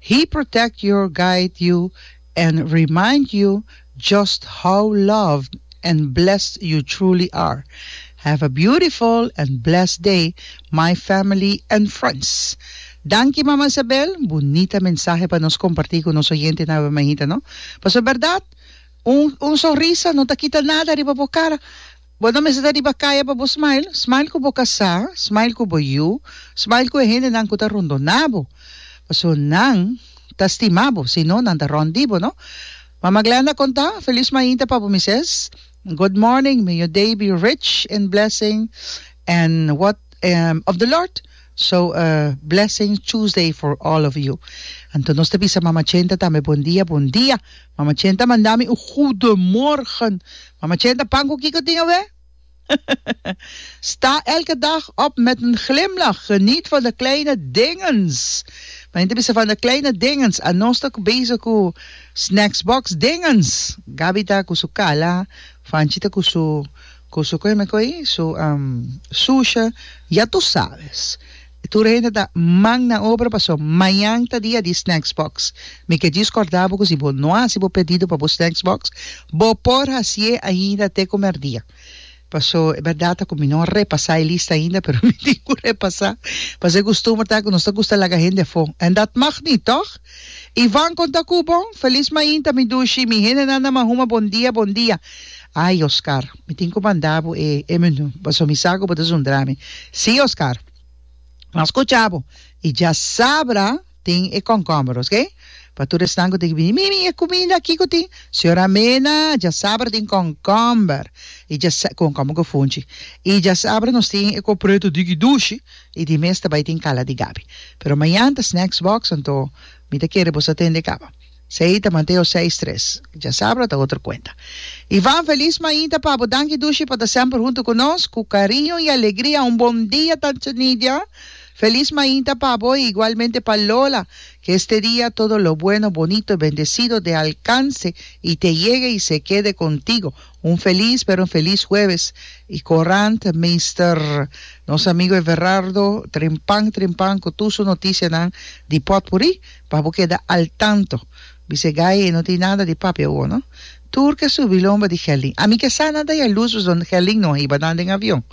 He protect your guide you and remind you just how loved and blessed you truly are have a beautiful and blessed day my family and friends Danki Mama Isabel bunita mensahe pa nos comparti cu nos oyente na Awe Mahita no pasobra berdad un un sonrisa no ta kita nada riba bo cara Bo ta mester ta riba kaya pa bo smile, smile ku bo kasá, smile ku bo yu, smile ku e hendenan ku ta rondoná bo, pasobra nan ta stima bo, si no nan ta rònt di bo, no? Mama Glenda kontá, Felis mainta pa bo mises, Good morning, may your day be rich in blessing and what. um of the Lord so a blessing Tuesday for all of you anto nos ta bisa mama chenta tambe bon dia bon dia mama chenta manda mi un goede morgen mama chenta pan ku kiko tin awe sta elke dag op met een glimlach geniet van de kleine dingens mane ta bisa van de kleine dingens a nos ta bezig ku snacks box dingens Gaby ta ku su kala Fanchi ta ku su Cu su coe me coe su susha ya tu sabes tur hende ta mang na obra paso mañan ta dia di snacks box mi ke djis corda bo cu si bo no haci bo pedido pa bo snacks box bo por hacie ainda te cu merdia paso e berdad ta cu mi no repasa e lista ainda pero mi tin cu repasa paso e costumber ta cu nos ta gusta laga hende afo en dat mag niet toch. Ivan konta ku bon. Felis mainta mi dushi, mi hendenan na Mahuma bon dia bon dia. Ai Oscar, mi tin ku manda bo e e menu paso mi sa ku bo ta zundra mi. Si Oscar. Mas kucha bo i djasabra tin e konkomber oske pa tur esnan ku tin ku bini. Mi mi e kuminda aki ku tin. Señora Mena, djasabra tin konkomber i djasa konkomber ku funchi i djasabra nos tin e kopretu di dushi. Y di mes ta bay tin cala di Gaby. Pero mañan ta snacks box anto mi ta kere boso tende caba. Sey ta Mateo seis tres. Dja sabra ta otro cuenta. Ivan feliz mainta pabo danki dushi pa ta semper hunto cu nos. Cu cariño y alegria un bon dia tata Nidia. Feliz mainta pabo y igualmente pa Lola. Que este dia todo lo bueno, bonito, bendecido, de alcance y te yegue y se kede contigo. Un feliz pero feliz hueves y corant Mister nos amigo Everardo trempan trempan cu tur su noticia nan di potpourri pa bo keda al tanto bis'e gaye e no tin nada di papia awo no tur ke su bilonba di Gelin ami ke sa nan ta ya luz paso Gelin no a hiba nan den avion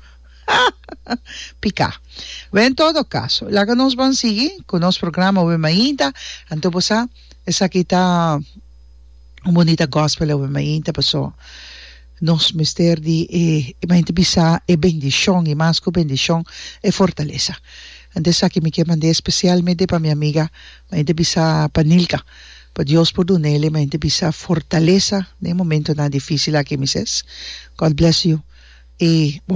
pika we en todo caso laga nos ban sigui cu nos programa we mainta anto bo sa esaki ta. un bonita gospel awe mi ainta paso nos mester di e mi ainta bisa e bendicion y mas cu bendicion e fortalesa anto esaki mi kier manda especialmente pa mi amiga mi ainta bisa pa Nilka pa Dios por duna el'e mi ainta bisa fortalesa den e momentonan dificil aki mi ses God bless you y bo.